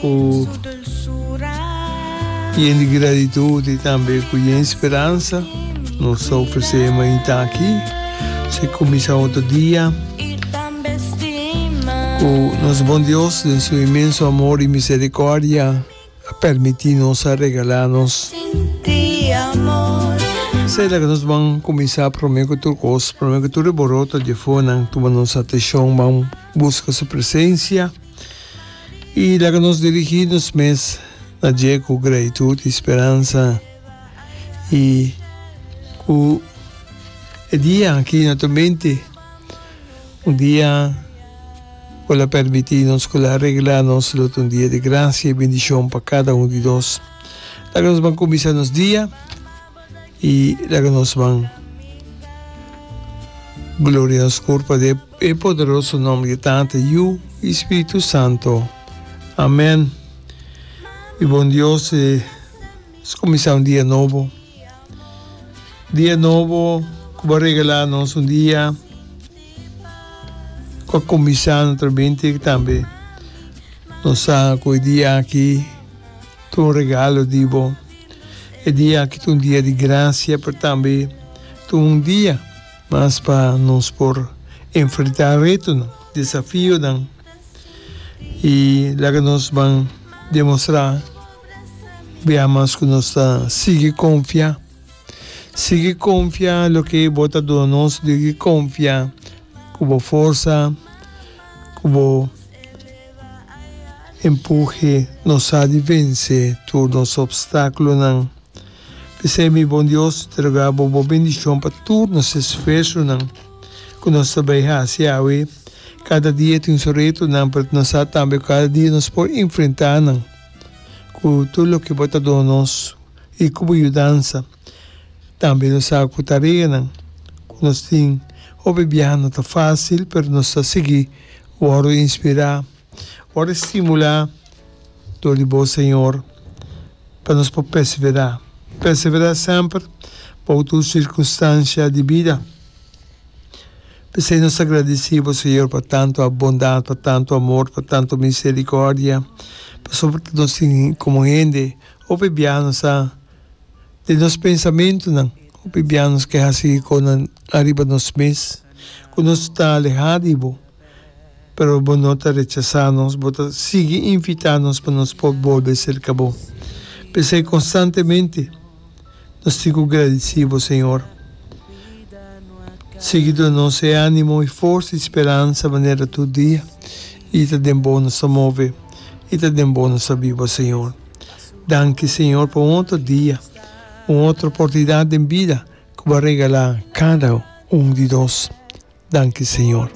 ku yen di gratitud i tambe ku yen speransa nos ta ofresé e mainta aki. Esei kuminsá otro dia ku nos Bon Dios den su inmenso amor i misericordia a permití nos, a regalá nos. Esei laga nos ban kuminsá promé ku tur kos, promé ku tur e boroto dje afuanan tuma nos atenshon, ban buska su presensia. Y laga nos dirigi nos mes na dje cu gratitud y speransa y cu e dia aki na tu mente, un dia cu el a permiti nos, cu el a regla nos, lo ta un dia di gracia y bendicion pa cada un di nos. Laga nos ban cuminsa nos dia y laga nos ban gloria nos cor pa de. E poderoso nom di Tata, Yu i Spiritu Santo. Amen. Mi bon Dios e skuminsá un dia nobo. Dia nobo ku bo a regalá nos un dia ku a kuminsá no trabente ku tambe nos sa ku e dia aki ta un regalo di bo. E dia aki ta un dia di grasia, pero tambe ta un dia. Mas pa nos por enfrentá retonan, desafionan i laga nos ban demostrá bia mas ku nos ta sigui konfiá. Sigui konfiá loke bo ta duna nos, sigui konfiá ku bo forsa, ku bo empuje nos sa di vensé tur nos opstákulonan. P'esei mi bon Dios ta rogá bo bo bendishon pa tur nos esfuersonan ku nos ta bai hasi awe. Kada dia tin su retonan, pero nos sa tambe ku kada dia nos por enfrentá nan ku tur loke bo ta duna nos i ku bo yudansa. Tambe nos sa ku tareanan ku nos tin. Hopi biaha no ta fásil, pero nos ta sigui wòrdu inspirá. Ora e stimulá dor di bo Señor pa nos por perseverá. Perseverá semper bou tur sirkunstansia di bida. P'esei nos ta gradisí bo Señor pa tantu bondat, pa tantu amor, pa tantu miserikòrdia, pasobra ku nos tin komo hende hopi bia nos ta den nos pensamentunan, hopi bia nos ke hasi konan ariba nos mes, ku nos ta alehá di bo. pero bo no ta rechasá nos, bo ta sigui invitá nos pa nos por bolbe serka bo. P'esei konstantemente nos tin ku gradisí bo, Señor. Sigui duna nos e ánimo, e forsa, e speransa manera tur dia, i ta den bo nos ta move, i ta den bo nos ta biba, Señor. Danki, Señor, pa un otro dia, un otro oportunidat den bida Cu bo a regalá cada un di nos. Danki, Señor.